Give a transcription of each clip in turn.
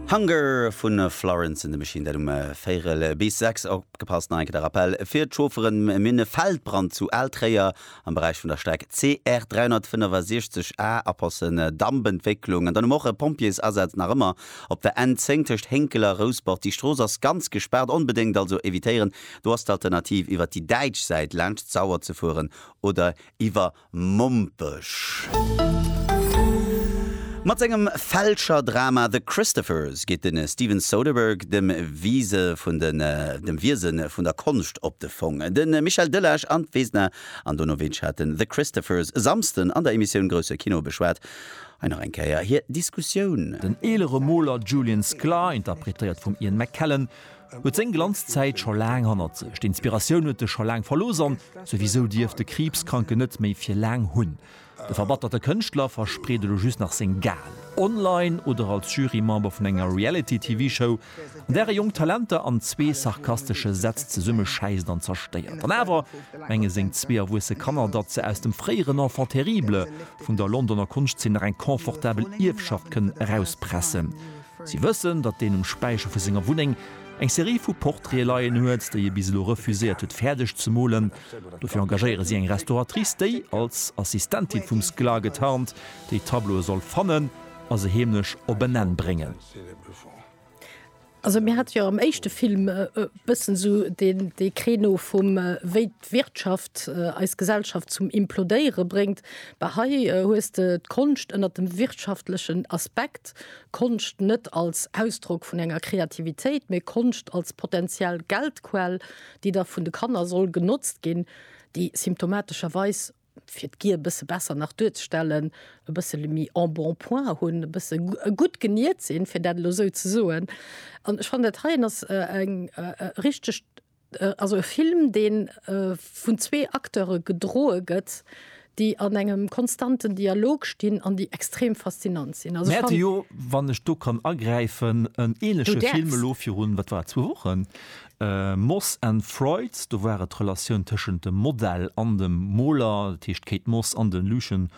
Hunger vu Florence and the Machine, dat um véirel bis sechs. Opgepasst, no enke de Rappell fir d'Chaufferen, Mir hunn e Feldbrand zu Al-Tréier am Beräich vun der Streck CR 365 A, Apassen, Dampentwécklung. An dann hu mer och e Pompjeesasaz nach ëmmer op der N 10 tëscht Hénkel a Rousbord. Déi Strooss ass ganz gespaart, onbedéngt also evitéieren. Do ass d'Alternativ iwwer déi däitsch Säit laanscht d'Sauer ze fueren oder iwwer. Mompech. Mat sengem Fälscher-Drama The Christophers geet de Steven Soderbergh dem Wiese vun den dem Wiese vun der Konscht op de Fong. De Michel Delage an d'Vesna Andonovic haten The Christophers e Samsden an der Emissioun Grousse Kino beschwat. Hei nach eng Kéier hir Diskussioun. Den eelere Moler Julian Sklar, interpretéiert vum Ian McKellen, Huet seng Glanzzäit scho laang hannert sech. D'Inspiratioun huet e scho laang verlooss an souwisou dierft de Kriibskranken net méi fir laang hunn. De verbatterte Kënschtler verspreet elo just nach seng Gagel. Online oder als Jurymember vun enger Reality-TV-Show, an där e jonk Talenter an zwee sarkastesche Sätz zesummeschäisst an zerstéiert. An awer menge seng zwee erwuesse Kanner, datt se aus dem fréieren Enfant terrible vun der Londoner Konschtzeen nach eng confortabel Ierfschaft kënnen erauspressen. Si wëssen, datt deen um Späicher vu senger Wunneng eng Serie vu Portraite leien huet, déi e bis elo refuséiert huet fäerdeg ze molen. Dofir engagéiere si eng Restauratrice, déi als Assistentin vum Sklar getarnt déi Tableaue soll fannen a se heemlech op en Enn bréngen. d'Wirtschaft eis Gesellschaft zum implodéiere bréngt, bah hei hues de d'Konscht ënnert dem wirtschaftlechen Aspekt, Konscht net als Ausdrock vun enger Kreativitéit, mee Konscht als potentiell Geldquell, déi da vun de Kanner soll genotzt ginn, déi symptomatescherweis, fir d'Gier e bësse besser nach duerzestellen, e bëssele méi en bon point hunn, e bësse gutt geniert sinn, fir dat elo esou ze soen. An ech fannen, dat heien ass eng richteg Also e Film, dee vun zwee Acteure gedroe gëtt, déi an engem konstanten Dialog stinn an déi extrem faszinant sinn. Also ech fann. Mir hate jo, wann ech do kann agräifen, en ähnleche Film elo virun, wat war et, zwou Wochen, Moss and Freud. Do war et d'Relatioun tëschent dem Model an dem Moler, dat heescht d'Kate Moss an de Lucien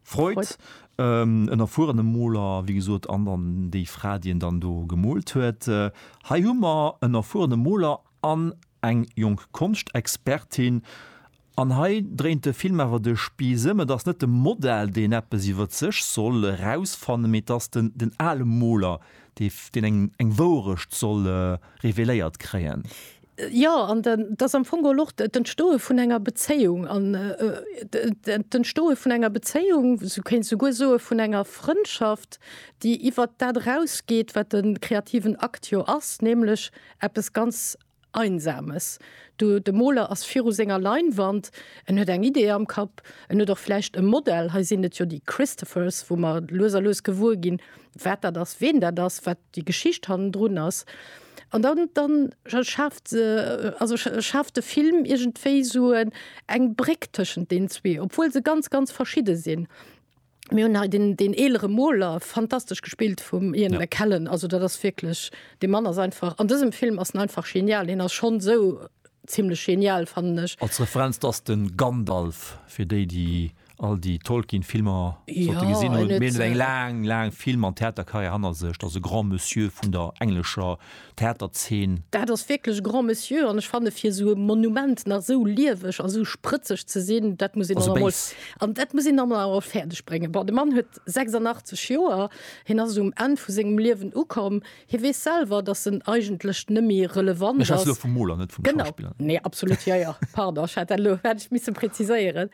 Freud, en erfuerene Moler, wéi gesot, an dann déi Fra, déi en dann do gemoolt huet. Hei hu mer en erfuerene Moler an eng jonk Konschtexpertin. An hei dréint de Film awer de Spieß ëm, Et ass net de Modell, deen eppes iwwer sech soll erausfannen, mee et ass den ale Moler, deen eng Wouerecht soll reveléiert kréien. Jo, an et ass am Fong geholl och d'Entstoe vun enger Bezéiung an d'Entstoe vun enger Bezéiung, s-du kéints souguer soe vun enger Frëndschaft, déi iwwert dat erausgeet, wat de kreativen Akt jo ass, nämlech eppes ganz Einsames. Du, de Moler ass viru senger Leinwand, en huet eng Idee am Kapp, en huet och vläicht e Modell, hei sinn et jo déi Christophers, wou mer lues a lues gewuer ginn, wat dat ass, ween dat ass, wat déi Geschicht hannendrun ass an dann dann schaaft se also schaaft de Film iergendwéi esou en eng Bréck tëschent den zwee, obwuel se ganz ganz verschidde sinn. Mir hunn hei den den eelere Moler, fantastesch gespillt vum Ian Ja. McKellen, also dat ass wierklech, dee Mann ass einfach, an dësem Film ass en einfach genial, hien ass schonn esou zimmlech genial fannen ech. Als Referenz, dat ass de Gandalf, fir déi, déi all déi Tolkien-Filmer sollte ja, gesinn hunn. Mir eng laang, laang Film an Theaterkarriär hanner sech, ass e Grand Monsieur vun der englescher Theaterzeen. Dat ass wierklech Grand Monsieur an ech fanne fir esou e Monument nach esou lieweg a sou sprëtzeg ze sinn, dat muss een emol an dat muss een emol awer fäerdeg bréngen. Bon, de Mann huet 86 Joer, hien ass um Enn vu sengem Liewen ukomm. Hie weess selwer, dass en eigentlech nëmmi relevant ass. Ech schwätze elo vum Moler, net vum Schauspiller. Genau, nee, absolut, jo, jo, pardon, ech hätt dat elo, hätt ech misse präziséieren.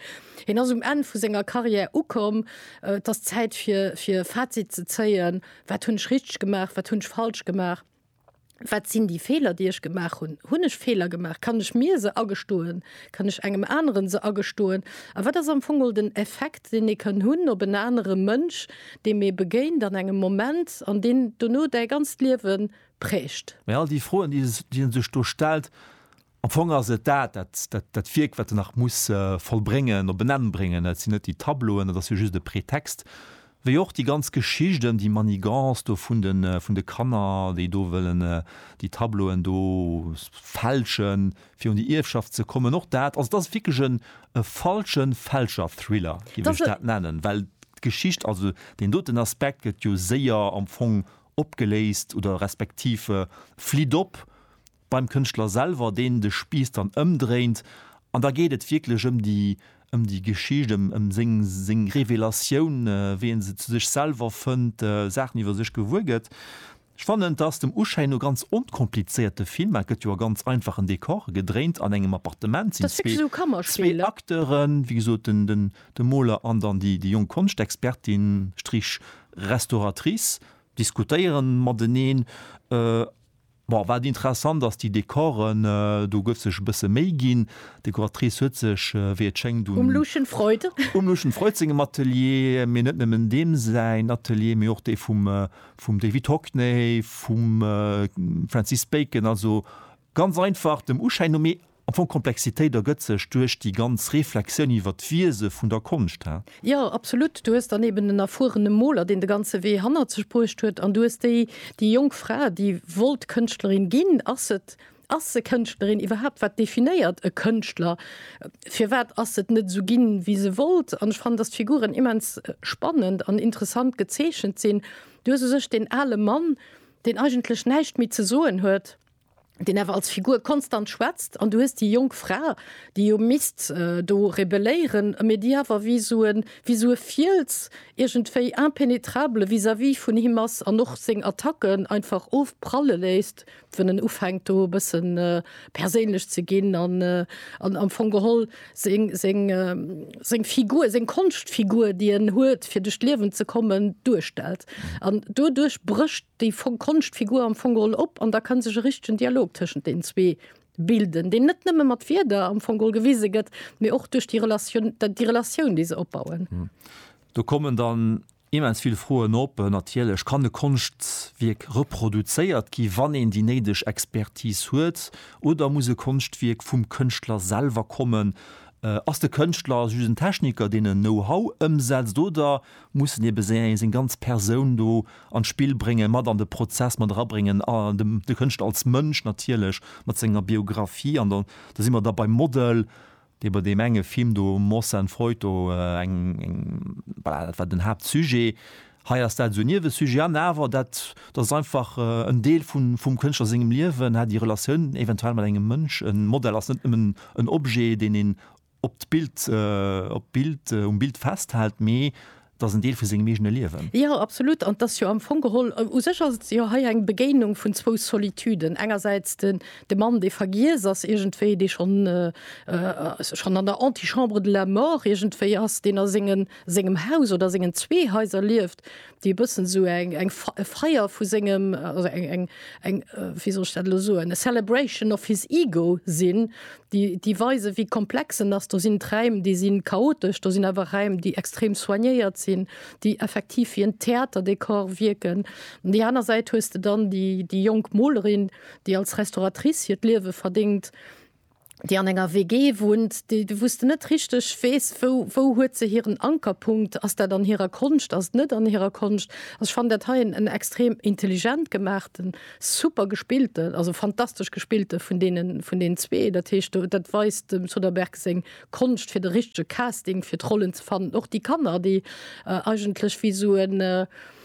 Hien ass um Enn vu senger Carrière ukomm. Et ass Zäit fir, fir Fazit ze zéien. Wat hunn ech richteg gemaach? Wat hunn ech falsch gemaach? Wat sinn déi Feeler, déi ech gemaach hunn? Hunn ech Feeler gemaach? Kann ech mir se agestoen? Kann ech engem aneren se agestoen? A wat ass am Fong mol den Effekt, deen ee kann hunn op en anere Mënsch, deem ee begéint an engem Moment an deen dono däi ganzt Liewe prägt? Mä all déi Froen, déi e sech do stellt, am Fong ass et dat, dat, dat Wierk, wat en nach muss vollbréngen, op en Enn bréngen. Et sinn net déi Tableauen, dat ass jo just e Pretext, Wéi och déi ganz Geschicht ëm déi Manigance do vun de vun de Kanner, déi do wëllen déi Tableauen do fälschen, fir un déi Ierfschaft ze kommen. Och dat, also dat ass wierklech en e falsche Fälscher-Thriller, géif ech dat nennen, well d'Geschicht, also deen doten Aspekt gëtt jo séier am Fong opgeléist oder respektiv flitt op, beim Kënschtler selwer, deen de Spiiss dann ëmdréint an da geet et wierklech ëm déi, ëm déi Geschicht, ëm, ëm seng, seng Revelatioun, wéi e se zu sech selwer fënnt, Saachen iwwer sech gewuer gëtt. Ech fannen, et ass dem Uschéin no ganz onkomplizéiert, de Film, et gëtt jo a ganz einfachen Dekore gedréint, an engem Appartement sinn zwee Acteuren, wéi gesot den, den, de Moler an dann déi, déi jonk Konschtexpertin, Strich, Restauratrice, diskutéieren mateneen. Bon, wat interessant ass, déi Dekoren, do gouf sech e bësse Méi ginn. D'Dekoratrice huet sech, wéi et schéngt, un. Um Lucien Freud. Um Lucien Freud sengem Atelier, mee net nëmmen deem säin Atelier, mee och dee vum, vum David Hockney, vum Francis Bacon, also ganz einfach dem Uschäin no. Mee Am Fong, d'Komplexitéit ergëtt sech duerch déi ganz Reflexioun iwwer d'Wiese vun der Konscht, hä? Jo, absolut. Du hues dann eben en erfuerene Moler, deen de ganze Wee hannert sech bruecht huet, an du hues déi, déi jonk Fra, déi wollt Kënschtlerin ginn. Ass se, ass se Kënschtlerin iwwerhaapt? Wat definéiert e Kënschtler? Firwat ass se net esou ginn, wéi se wollt? An ech fannen, dass d'Figuren immens spannend an interessant gezeechent sinn. Du hues u sech deen ale Mann, deen eigentlech näischt méi ze soen huet, deen awer als Figur konstant schwätzt, an du hues déi jonk Fra, déi jo misst do rebelléieren, mee déi awer wéi esou e, wéi esou e Fiels iergendwéi impenetrable vis-à-vis vun him ass an och seng Attacken einfach ofpralle léisst, wann en ufänkt do e bësse perséinlech ze ginn an am Fong geholl seng Figur, seng Konschtfigur, déi en huet, fir duerch d'Liewen ze kommen, duerstellt. An doduerch brécht. Déi konscht Figur am Fong geholl op, an da ka sech e richtegen Dialog tëschent deenen zwee bilden, deen net nëmme mat Wierder am Fong geholl gewise gëtt, mee och duerch déi Relatioun, déi Relatioun, déi se opbauen. Do kommen dann immens vill Froen op. Natierlech kann e Konschtwierk reproduzéiert gi wann een déi néideg Expertise huet, oder muss e Konschtwierk vum Kënschtler selwer kommen? Ass de Kënschtler just en Techniker, deen en Know-how ëmsetzt, oder mussen ebe seng seng ganz Persoun do an d'Spill bréngen, mat an de Prozess mat erabréngen a dem de Kënschtler als Mënsch natierlech mat senger Biographie an dann do si mer da beim Model, dee bei deem enge Film do Moss and Freud do eng eng voilà dat war den Haaptsujet. Hei ass dat esou e Niewesujet an awer dat dat ass einfach en Deel vun vum Kënschtler sengem Liewen, hat déi Relatioun eventuell mat engem Mënsch. E Model ass net nëmmen en Objet, deen een op d'Bild, op d'Bild, um Bild festhält, mee et ass en Deel vu sengem eegene Liewen. Jo, absolut. An et ass jo am Fong geholl, u sech ass et jo hei eng Begéinung vun zwou Solituden. Engersäits den, de Mann, dee vergiess ass iergendwéi, dee schonn, schonn an der Antichambre de la mort iergendwéi ass, deen a sengen, sengem Haus oder sengen zwee Haiser lieft, déi e bëssen esou eng eng e Feier vu sengem oder eng eng eng wéi soll ech dat elo soen e Celebration of his ego sinn, déi déi weisen, wéi komplex en ass. Do sinn d'Räim, déi si chaotesch, do sinn awer Räim, déi extrem soignéiert sinn, déi effektiv wéi en Theaterdekor wierken. An déi aner Säit hues de dann déi déi jonk Molerin, déi als Restauratrice hiert Liewe verdéngt, déi an enger WG wunnt, déi de wous de net richteg weess, wou wou huet se hiren Ankerpunkt, ass dat an hirer Konscht, ass et net an hirer Konscht? Also ech fannen dat hei en extrem intelligent gemaachten, super gespillte, also fantastesch gespillte vun deene vun deenen zwee. Dat heescht do dat weist dem Soderbergh seng Konscht fir de richtege Casting fir d'Rollen ze fannen. Och déi Kanner, déi eigentlech wéi esou en.